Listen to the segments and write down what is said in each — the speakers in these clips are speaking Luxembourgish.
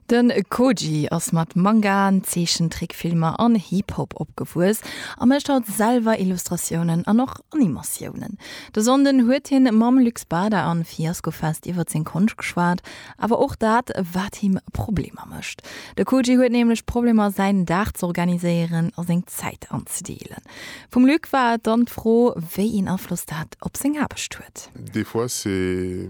De Koji ass mat Mangaen, Zeechentrickfilmer an Hip-Hop opgewuess a mécht haut selwer Illustratiounen an och Animatiounen. De Sonnden huet hien mam Luc Bada a Fiasco Fest iwwer seng Konscht geschwat, awer och dat, wat him Problemer mécht. De Koji huet nämlech Problemer, säin Dag z'organiséieren a seng Zäit anzedeelen. Vum Luc war et dann d'Fro, wéi een Afloss dat op seng Aarbecht huet. Des fois c'est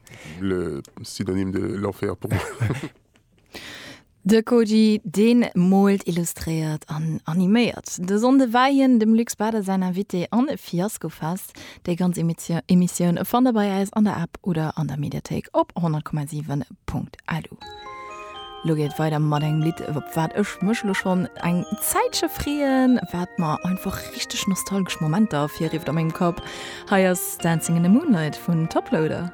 Le synonyme de l'enfer pour moi. De Koji, deen moolt, illustréiert an animéiert. De Sonnde war hien dem Luc Spada säin Invité an Fiasco Fest. Déi ganz Emissioun fannt der bei eis an der App oder an der Mediathéik op 100,7. Ah du. Lo geet et weider mat engem Lidd, op wat ech mech lo schonn eng Zäitche freeën, wat mer einfach richteg nostalgesch Momenter ervirrifft a mengem Kapp. Hei ass Dancing in the Moonlight vun Toploader.